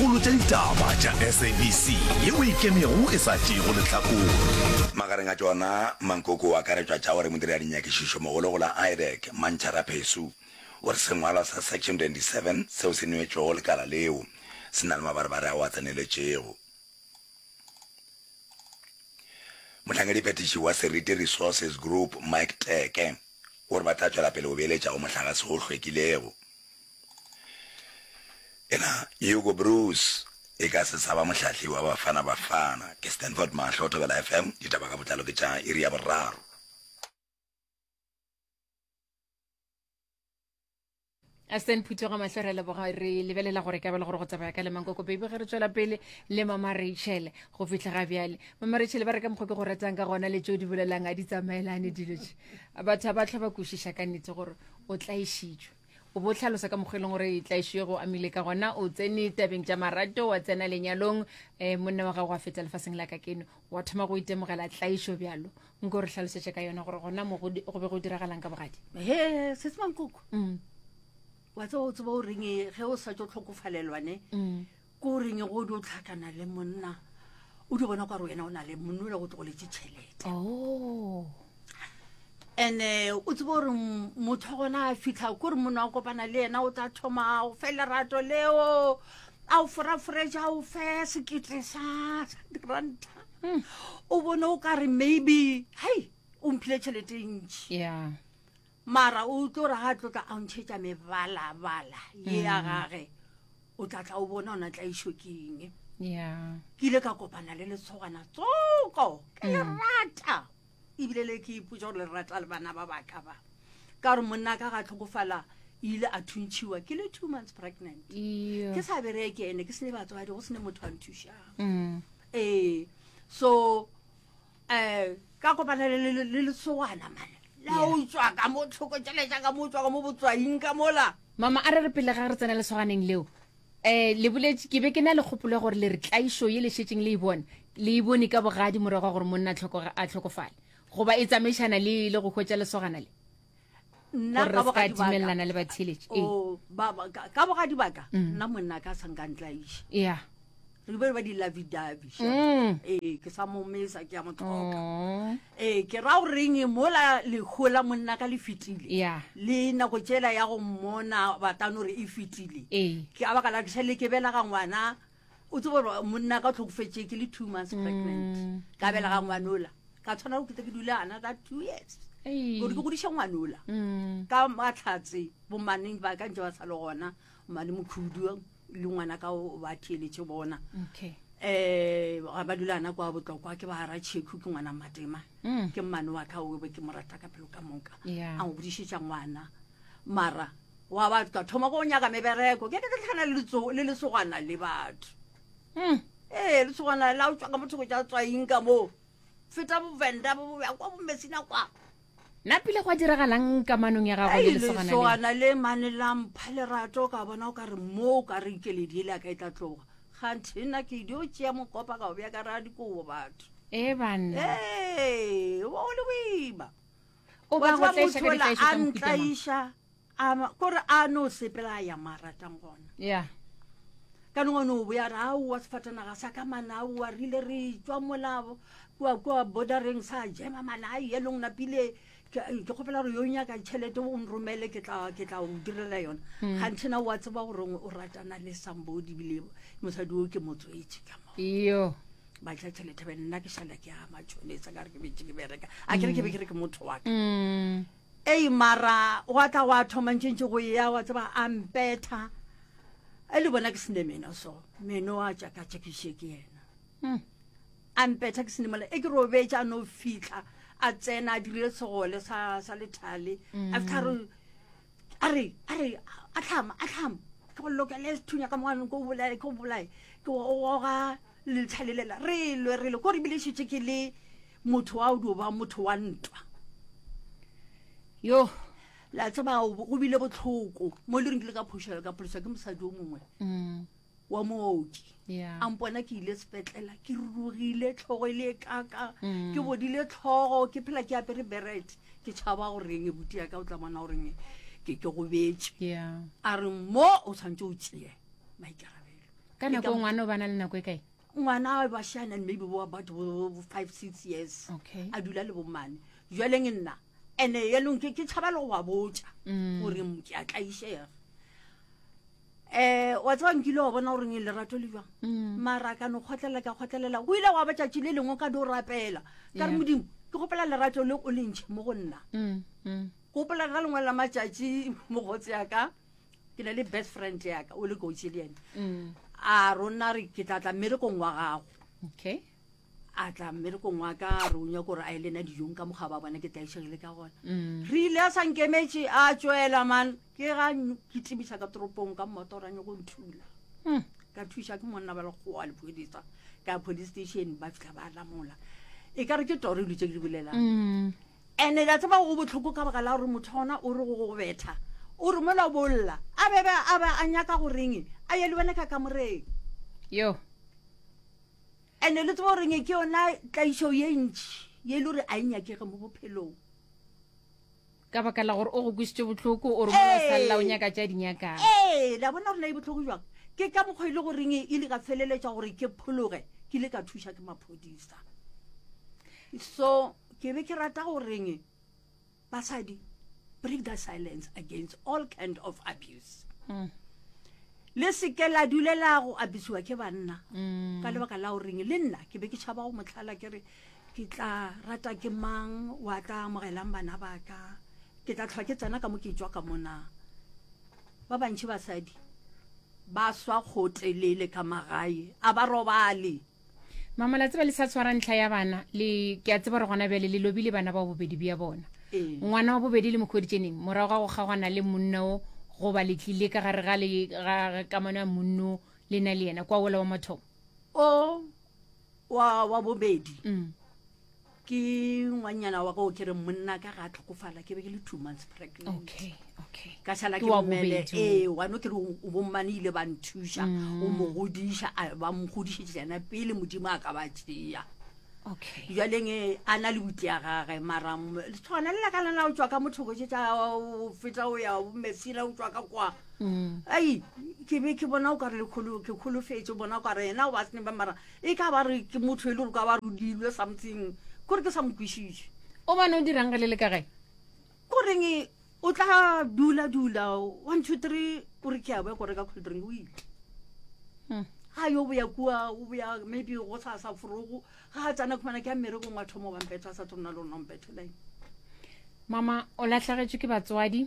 Kgolo tša ditaba tša SABC ye o ikemego e sa tšeego lehlakore. Magareng a tšona, Mankoko o akaretšwa tša gore modiri a dinyakišišomogolo go la IDEC, Mantšha Raphesu, o re sengwalwa sa Section 27 seo se neetšwego lekala leo se na le mabarebare ao a tseneletšego. Mohlangediphethiši wa Seriti Resources Group, Mike Teke, o re ba tla tšwela pele go beeletša go mohlagase o hlwekilego. Ena Hugo Broos e ka se sa ba mohlahli wa Bafana Bafana. Ke Stanford Mahlo, Thobela FM, ditaba ka botlalo ke tša iri ya boraro. Aston Phuthoga mahlo re leboga re lebelela gore ka bela gore go tsamaya ka lemang koko baby ge re tswela pele le mama Rachel go fihla ga bjale mama Rachel ba re ka mokgwa ke go ratang ka gona le tšeo di bolelang a di tsamaelane dilo tše batho ba tlho ba kwešiša ka nnete gore o tlaešitšwe o bo tlhalosa ka mokgwa e leng gore tlaišo ye go amile ka gona o tsene tabeng tša marato wa tsena lenyalong um eh, monna wa gago wa feta lefaseng la ka keno wa thoma go itemogela tlaišo bjalo nko re tlhalosetše ka yona gore gona mo go be go diragalang ka bogadi he setsemankoko mm. wa tseba o tseba o reng ge o sa tso tlhokofalelwane mm. Ke o reng go di o tlhakana le monna o di bona kwa re wena o na le monna o le go tlogoletše tšhelete oh. ene o tsebo gore motho gona a fitlha ko re monna wa kopana le yena o tla thoma o fe lerato leo a o foraforetša o fe sekete sa diranta hmm. o bone o ka re maybe hei o mphile tšhelete e ntši yeah. mara o tlo ra ga tlotla a ntšhetša mebalabala ye ya gage o tla tla o bona ona tla išo keng yeah ke ile ka kopana le letshogwana tsoko ke le mm. rata ebile le ke ipotsa gore le rata le bana ba baka ba ka gore monna ka ga tlhokofala ile a thuntšhiwa ke le two months pregnant ke sa bereke ene ke sene batswadi go sene motho a nthušang mm. ee so um ka kopana le lesogana mane la o tswa ka mo tlhoko tšele jaaka mo tswa ka mo botswaing ka mola mama a re re pele ga re tsena lesoganeng leo um le boletse ke be ke na le kgopolo ya gore le re tlaišo ye le šetseng le e bone le e bone ka bogadi morago wa gore monna a tlhokofale goba e tsamaišana le le go hwetša lesogana le nna ka bogadi baka le batheletši o oh, ba ka bogadi baka mm. nna monna ka sanka ntlaiša yeah re be ba di lavi davi mm. ee ke sa mo mesa ke ya mo tlhoka oh. ee ke ra gore eng mola lekgola monna ka le fetile yeah le nako tsela ya go mmona batano re e fetile ee ke a baka la ke sa le ke bela ga ngwana o tsebo gore monna ka o tlhokofetse ke le two months mm. pregnant ka bela ga ngwanola ka tshwana go kete ke dula ana ka two years gore ke godiša ngwanola mm. ka matlhatse bomaneng ba ka ntse ba sa le gona mane mokhudu le ngwana ka ba theeletse bona okay eh ga ba dula ana kwa botlokwa ke ba ra cheku ke ngwana matema mm. ke mmane wa ka o be ke morata ka pelo ka moka a ngodišetša ngwana mara wa batho ka thoma go nyaka mebereko ke ketlhana le lesogwana le batho hmm. ee lesogwana la o tswa ka motho go ja tswaing ka moo feta bovenda boboya kwa bomesina kwa nna pile go a diragalang kamanong ya gago le lesogana le mane la mpha lerato ka bona o ka re mo o ka re ikeledi ele a ka e tla tloga ganthe nna ke dio tšea mokopa ka go bja ka raya dikobo batho e banna ee o le boima o ba go tlaiša ka ditlaišo tsa mohuta A ma, kore a no sepela a ya ma ratang gona. Yeah. Ka nongwe no boya ra a wa sefatanaga sa ka mana a wa rile re tswa molabo kwa kwa bordereng sa jema mana a ye long napile ke ke kgopela gore yo nyaka tšhelete o nromele ke tla ke tla o direla yona hmm. ga nthena wa tseba gore o ratana le sambodi bile mosadi o ke motswetse ka mo yo ba tla tšhelete be nna ke šala ke ama tšhonetsa ka re ke betse ke bereka a kere ke be ke re ke motho wa ka hmm. Ei mara gwa tla gwa thoma ntšentše go eya wa tseba a mpetha e le bona ke sene meno so meno a tšakatšakiše ke yena hmm. a mpetha ke sene mola e ke robetša a no fitlha a tsena a dirile segole sa sa lethale hmm. after a re a re a tlhama a tlhama ke go lokele sethunya ka moganong ke o bolae ke o bolae ke oga lethalelela re lwe re lwe ko re bile šetse ke le motho wa o dio ba motho wa ntwa yo la tseba go bile botlhoko mo le reng ke le ka phošelo ka pholoswa ke mosadi o mongwe mm. wa mooki yeah. a mpona ke ile sepetlela ke rurugile tlhogo e le e kaka mm. ke bodile tlhogo ke phela ke apere beret ke tšhaba goreng e buti yaka o tla bona goreng ke ke gobetse yeah. a re mo o tshwanetse o tseye maikarabelo ka nako ngwana o bana le nako e kae ngwana a bashana and maybe bo about bo bo five six years Okay. a dula le bomane jwaleng nna and yanong ke ke tshaba le go wa botša Mm. gore m- ke a tlaišega um wa tseba nkile wa bona gore nge lerato le jwang Mm. mara ka no kgotlelela ka kgotlelela go ile gwa batšatši le lengwe ka do rapela ka re Yeah. modimo ke gopela lerato le o lentšhe mo go nna Mm, mm. ke gopela ka lengwe la matšatši mogotse yaka ke na le best friend yaka o le kotsi le ene mm. a rona re ke tla tla mmerekong wa gago okay a tla mmerekong wa ka re o nyako gore a e lena dijong ka mokgwa ba bona ke tla išang le ka gona mm. re ile a sankemetse a tswela man ke ga ke tebisa ka toropong ka mmotoranye go nthula mm. ka thuša ke monna ba lekgowa lephodisa ka police station ba fitlha ba lamola e ka re ke toro e dutse ke di bolelang mm. And ke a tseba go bohloko ka baka la gore motho wa gona o re go go betha, o re mola o bo o lla, a be be a be a nyaka go reng a ye le wena ka kamoreng. Yo. And le tseba goreng ke yona tlaišo ye ntši ye e le gore a e nyakege mo bophelong. Ka baka la gore o go kwisitše bohloko, o re mola o sa lla o Ee. nyaka tša di nyakang. Ee, le a bona gore na e bohloko jwang. Ke ka mokgwa e le goreng e ile ka feleletša gore ke phologe, ke ile ka thuša ke maphodisa. So. Ke be ke rata go reng basadi break that silence against all kind of abuse. Mm. Le se ke la dulela go abisiwa ke banna. Mm. Ka lebaka la go reng le nna ke be ke tšhaba go motlhala ke re ke tla rata ke mang wa tla amogelang bana ba ka. Ke tla tlhwa ke tsena ka mo ke tšwa ka mona. Ba bantši basadi ba swa kgotelele ka magae a ba robale. mama la tseba le sa tshwara ntlha ya bana le ke a tseba gore gona bjale le lobile bana ba bobedi bja bona ee. ngwana wa bobedi le mokgweditšeneng morago ga go kgagwana le monna o goba le tlile ka gare ga le ga kamano ya monno le na le yena kwa ola wa mathomo o wa wa bobedi mm. Ke ngwanyana wa go ke re monna ka ga tlhokofala ke be ke le two months pregnant. Okay, okay. Ka sala ke mmele e wa no ke re o bommane ile ba nthuša mm. o mo godiša ba mo godišitse jana pele modimo a ka ba tšea. Okay. Jwaleng e a na le buti ya gage mara tshwana le ka lena o tswa ka mothoko tse tsa o feta o ya o mefila o tswa ka kwa. Mm. Ai ke be ke bona o ka re le kholo ke kholofetse bona o ka re yena o ba sene ba mara E ka ba re ke motho e le gore ka ba rudilwe something kore ke sa mo kwešiše o bane o dirang ge le le ka gae ko reng o tla dula dula one two three o re ke ya boya ko reka cold drink o ile hmm. ga yo boya kua o boya maybe go sa sa forogo ga a tsana khumana ke ya mmerekong wa thomo bampetho a sa tsona le ona ompetho line mama o latlhagetswe ke batswadi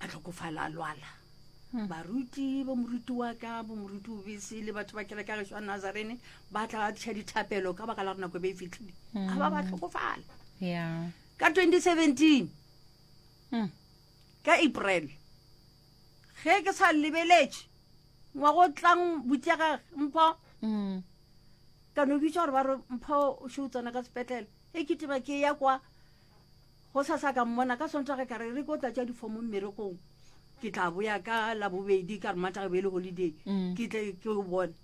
a tlhokofala a lwala Hmm. baruti bo moruti wa ka bo moruti o bese le batho ba kereke ya geso ya nazarene ba tla ba tliša dithapelo ka baka la gore nako e be e fitlhile Hmm. ga ba ba tlhokofala Yeah. ka 2017 Mm. ka april ge ke sa lebeletše ngwago o tlang butiagage mpho Mm. ka no bitša gore ba re mpho o še o tsena ka sepetlele e ke teba ke ya kwa Gosasa ka mmona ka Sontaga ka re re ko tlatša difomo mmerekong. Ke tla boya ka Labobedi ka re Mataga e be e le holiday. Mm. Ke tle ke o bone.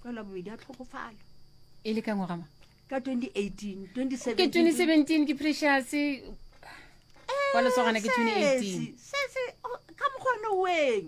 Ka Labobedi a tlhokofala. E le ka ngwagama? Ka 2018, 2017. Ke 2017 ke Precious. Kwa lesogana ke 2018. Sesi, sesi, oh, ka mokgwa no weng.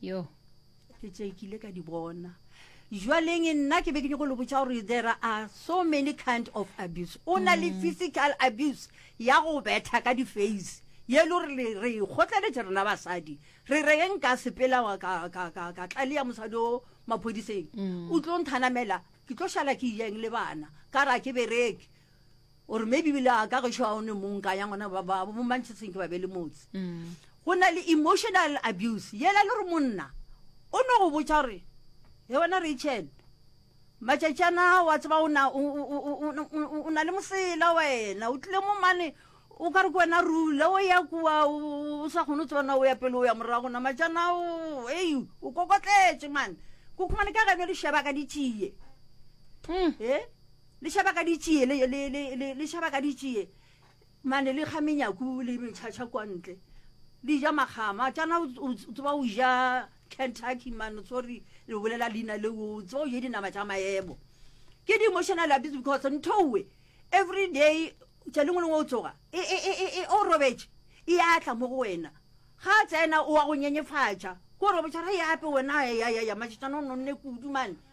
yo ke tše ke ile ka di bona jwaleng nna ke be ke nyoko le botsa gore there are so many kind of abuse o na le mm. physical abuse ya go betha ka di-face ye le gore re kgotleletše rena basadi re reng ka sepela ka tlale ya mosadi o maphodiseng mm. o tlo nthanamela ke tlo šala ke jeng le bana ka ra ke bereke o re maybe bile a ka gešo a one mong ka ya ngwana ba bo manchester ke ba be le motse mm. go na le emotional abuse yela le re monna o no go botša gore he wena rachel matšatši ana wa tseba o na le mosela wena o tlile mo mane o ka re ke wena rule o ya kua o sa kgone o tsebana o ya pele o ya morago na matšana o ei o kokotletše mane ko khumane ka geno le sheba ka ditšie mm. e Le šaba ka ditšie, le, le, le, le, le šaba ka ditšie, mane le kga menyaku le metšhatšha kua ntle. Di ja makgama. Tšana o, o tseba o ja Kentucky man, sorry, le bolela leina le o tseba o je dinama tša maebo. Ke di-emotional abuse because nthowe every day tša lengwe lengwe o tsoga e, e, e, e, e o robetše e ya tla mo go wena ga tsena o wa go nyenyefatša ko robetša ra e ape wena ya ya ya matšatšana o nonne kudu mane